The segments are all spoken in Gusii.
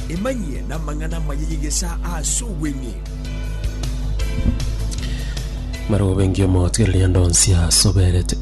Emanyie namang'ana amaya y'egesaa ase obweng'e. Marobengi omotwereria ndonsi asoberete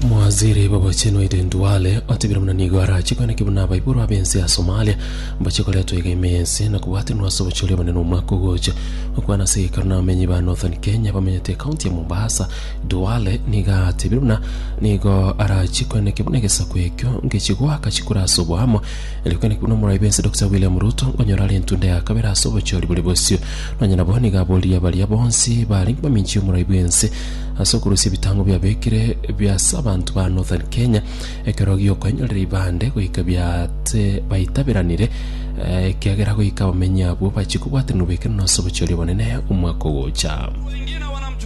Mwaziri Babachenu Aiden Duale otebire muna nigo arache kweneki buna abaiboro abense ya Somalia mbache koretwa iga ime yense na kobwatanwa ase obochori obonene omwaka ogocha okwana ase egekaro na abamenyi ba Northern Kenya bamenyete ekaunti ya Mombasa Dwale nigo atebirie buna nigo arachie koeneke buna egesaku ekio ngechie goaka chikura ase oboamo, erio koeneke buna omoraai bwensi Dokita William Ruto nkonyora are entunda ya kabere ase obochori bore bosio. Nonya nabo nigo aboririe baria bonsi barenge baminchi y'omoraai bwensi ase okorusia ebitango biabekire bia ase abanto ba Northern Kenya ekero giokoenyorera ibande goika biate baitaberanire eh, ekiagera goika abamenyi abwo bachie kobwatanigwa ekero nase obochori obonene omwaka ogocha.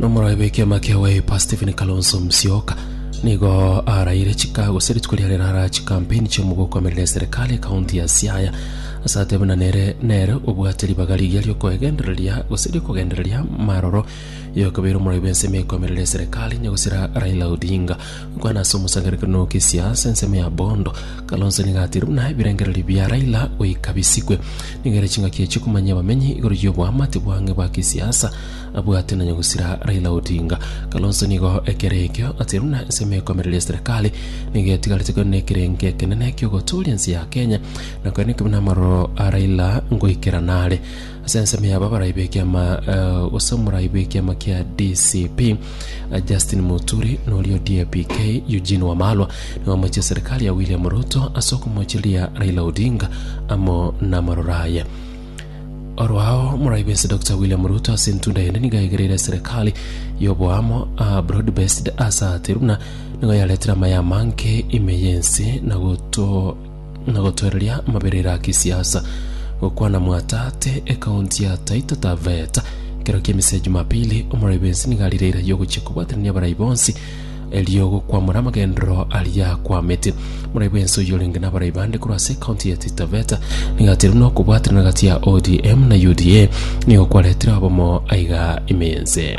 Nomorogi bw'ekiama kia Wiper Stephen Kalonzo Musyoka nigo araire chika gose rituko riare rara chikampeni chi'omogokomerera eserikali ekaunti ya Siaya ase atebe buna nere nere obwate ribaga rigiya riokoegendereria gose riokogendereria maroro yokobeire omorogi bw'ensemo ekomerera eserikali nyagusera Raila Odinga Kwana ase omosangererekano na okesia ase ensemo ya bondo. Kalonzo nigo atiire buna ebirengererio bia Raila goika bisikwe. Nigo ere ching'aki echio komanyia abamenyi igoro y'oboamate bwang'e bwa kisiasa abwate na nyagusira Raila Odinga. Kalonzo nigo ekero ekio atiire buna ensemo ya ekomereria serikali nigo etigarete kore nekerengo ekenene ki'ogotooria ense ya Kenya na kore nekibe namaroro a Raila ngoikera nare. Ase ensemo yabo abarai b'ekiama gose omorai bw'ekiama kia DCP Justin Muturi na oria o DAP-K Eugene Wamalwa nigo bamoetie serikali ya William Ruto ase okomochiria Raila Odinga amo namaroro aye. Orwao omorai bwense Dr William Ruto ase entunda ende nigo aigereire serikali y'oboamo aa broad based ase ati buna nigo yaretire amaye amange ime y'ense na goto na gotwereria amaberero a kisiasa, gokwana Mwatate, ekaunti ya Taita Taveta, ekero ki'emise ya Jumapili, omorai bw'ense nigo arire eira y'ogochia kobwatanania abarai bonsi, erio gokwamora amagenderero aria akwamete. Omorai bw'ense oyio orenge nabarai bande korwa ase ekaunti ya Taita Taveta nigo ateirwe na okobwatanana gati ya ODM na UDA, nigo kwaretire obomo aiga imense.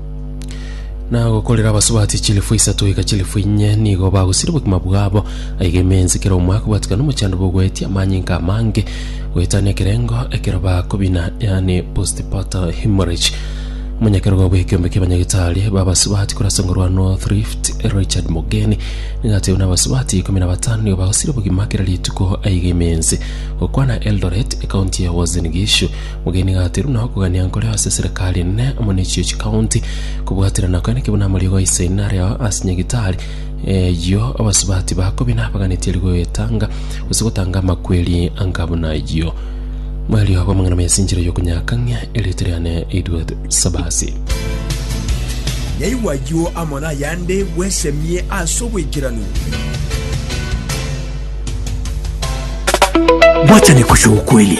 Na gokorera abasubati chilifu isato goika chilifu inye nigo bagosiria obogima bwabo. Aiga emensi kera omo akobwatikana nomochando bw'ogoetia amanyinga amange, goetania ekerengo ekero bakobina, yaani postpartum hemorrhage. Omonyakerogo bw'ekiombe kia abanyagitari b'abasubati korwa ase engorwa ya North Rift, Richard Mogeni, nigo atebire buna abasubati ikomi na batano nigo bagosiria obogima kera rituko aiga emensi. Gokwana Eldoret, ekaunti ya Uasin Gishu, Omogeni gatiru na okogania nkore ase eserekari enene amo ne chio chikaunti, kobwaterana kore nakebuna amariogo aise aino are ao ase nyagitari eyio abasubati bakobe nabaganetie rigoyo etanga, gose gotanga amakweri anga buna ayio. Mwario bw'amang'ana mayasinchire y'okonyakang'ia erieta riane Edward Sabasi. Yaigwa ayio amo nayande, bwesemie ase oboikeranu. Bwachani kuchia ukweli.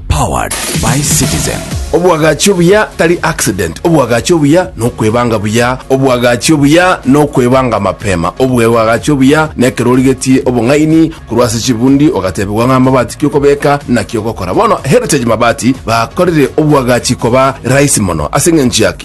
Powered by Citizen. Obwagachi obuya tari accident, obwagachi obuya nokwebanga buya, obwagachi obuya nokwebanga mapema, obwebwagachi obuya nekero origetie obong'aini korwa ase chibundi ogatebigwa ng'a amabati ki okobeka naki ogokora. Bono Heritage Mabati bakorire obwagachi koba rahisi mono. Ase eng'encho yaki?